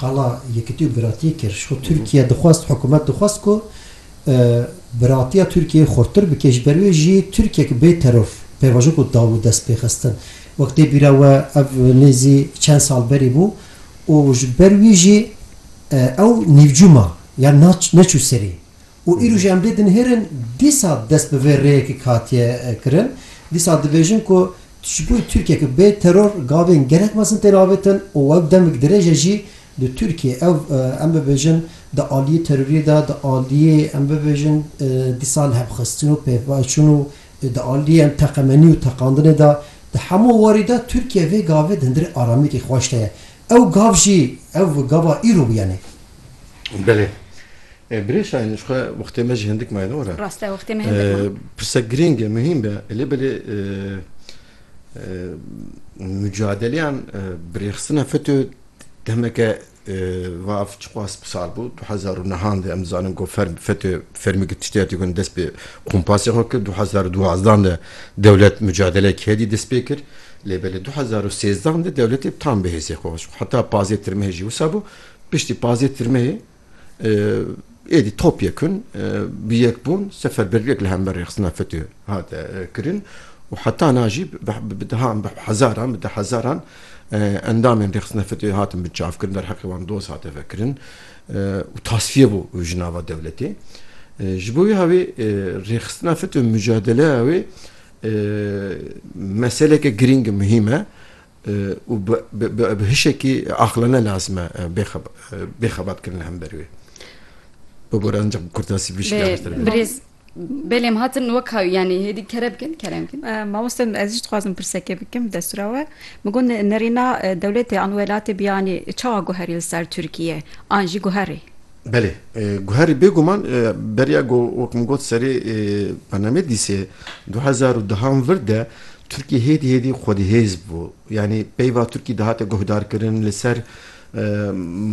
Qala Yekitî û Biratiyê kir. Ji xwe Tirkiye dixwest, hikûmet dixwest ku biratiya Tirkiyeyê xurttir bike. Ji ber wê jî Tirkiyek bê teror pêvajo ku daw û dest pê xistin. Wek tê bîra we ev nêzî çend sal berî bû û ji ber wî jî ew nîvcû ma, yan neçû serî. Û îro jî em dê dinihêrin dîsa dest bi vê rêyekê ke hatiye kirin. Dîsa dibêjin ku ji bo Tirkiye ku bê teror gavên gelek mezin tên avêtin û wek demik dirêj e jî di Tirkiyê ew em bibêjin di aliyê teroriyê de di aliyê em bibêjin dîsa lihevxistin û pêvçûn û di aliyê em teqemenî û teqandinê de di hemû warî de Tirkiye vê gavê di hundirê aramiyekê xweş de ye. Ew gav jî ev gava îro bû yanî Belê. Birê Şahin ji xwe wextê me jî hindik maye ne were. Rast e wextê me hindik ma. Pirse girîng e, muhîm be. Lê belê mucadeleyan birêxistina FETÖ demeke va çiqas bi sal bû. Du hezar û nehan de em dizanin ku ferm FETÖ fermî ku tiştê hatî gon dest bi kompasê xwe kir. Du hezar û duwazdan de dewlet mucadeleyek hêdî dest pê kir. Lê belê du hezar û sêzdan de dewletê tam bi hêzê xwe xwest xwe. Heta pazê tirmehê jî wisa bû. Piştî pazdeh tirmeyê êdî topyekun bi yek bûn seferberviyek li hember rêxistina FETÖ hat kirin û heta na jî bi dehan bi hezaran bi deh hezaran endamên rêxistina FETÖ'yê hatin binçavkirin derheqê wan doz hate vekirin û tasfiye bû ji nava dewletê. Ji bo wiha wê rêxistina FETÖ mucadeleya wê meseleke girîng e muhîm e û bi hişekî aqilane lazim e bêxebat kirin li hember wê. Bi gor ancak bi kurtasî vî şikar bihtir bê. Belê em hatin weka yanî hêdî kere bikin kere bikin. Mamoste ez jî dixwazim pirsekê bikim destûra we. Min got nerîna dewletê an welatê biyanî çawa guherî li ser Tirkiye an jî guherî. Belê, guherî bêguman beriya ku wek min got serê bernameyê dîsê du hezar û duhan vir de Tirkî hêdî hêdî xwedihêz bû. Yanî peyva Tirkî dihate guhdarkirin li ser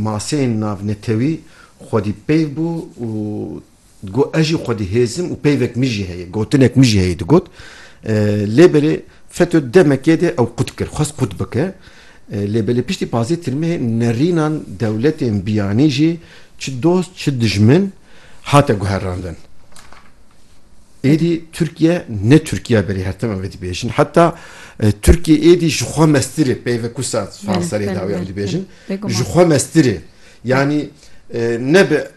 maseyên navnetewî xwedîpeyv bû û Digot ez jî xwedî hêzim û peyvek min jî heye, gotinek min jî heye digot. Lê belê FETÖ demekê de ew qut kir, xwest qut bike. Lê belê piştî pazê tirmehê nerînan dewletên biyanî jî çi dost çi dijmin hate guherandin. Êdî Tirkiye ne Tirkiye belê her tim ev ê dibêjin. Heta Tirkiye êdî ji xwe mestir e peyve ku sat sar serê dawî ew dibêjin. Ji xwe mestir e. Yanî nebe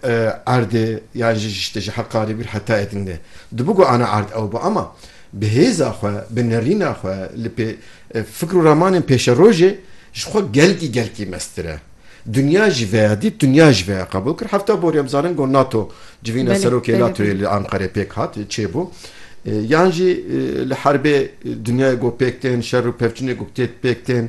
erdê yan jî ji ji Heqarê bû heta Edingê. Dibû ku ana erd ew be ama bi hêza xwe, bi nerîna xwe li pê fikr û ramanên pêşerojê ji xwe gelkî gelkî meztir e. Dinya jî veya dît, dinya jî veya qebûl kir. Hevta borî em zanin ku nato civîna serokê natoyê li Anqerê pêk hat, çêbû. Yan jî li herbê dinyayê ku pêk tên, şer û pevçûnê ku tê pêk tên,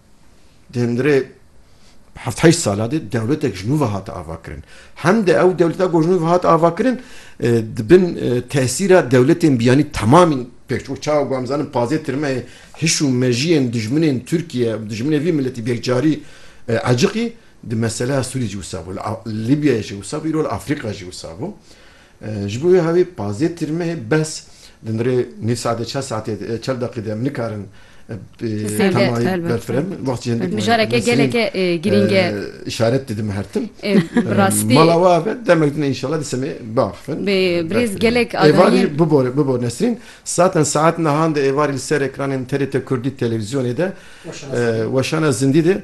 Di hundirê heft heşt sala de dewletek ji nû ve hate avakirin. Hem de ew dewleta ku ji nû ve hate avakirin di bin tesîra dewletên biyanî temamîn pêk çû. Çawa ku em zanin pazê tirmeyê hiş û mejiyên dijminên Tirkiye û dijminê vî miletî bêkcarî eciqî di meseleya Sûriyê jî wisa bû. Li Libyayê jî wisa bû îro li Afrîka jî wisa bû. Ji bo wê havê pazdeh tirme ye bes. Di nirê nîv saetê çar saetê çar deqî de em nikarin temayê berfirev bin. Wextî hindik mijareke geleke girîng e. Îşaret didin her tim. Bi rastî. Mala we ave demek din e înşallah dîsa me biaxivin. Birêz gelek adaniyên. Êvarî bibore bibor Nesrîn. Saetan saet nihan de êvarî li ser ekranên TRT Kurdî televîzyonê de weşana zindî de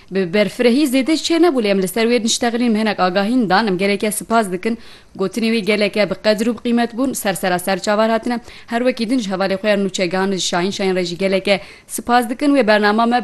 Bi berfirehî zêde çê nebû lê em li ser wê niştexilîn hinek agahîn dan em gelêke sipas dikin. Gotinê wî geleke bi qedir û bi qîmet bûn. Ser sera ser çavar hatine. Her wekî din ji hevalê xwe ya nûçe gihandin Şahîn Şahîn re jî geleke sipas dikin. Wê bernama me bi.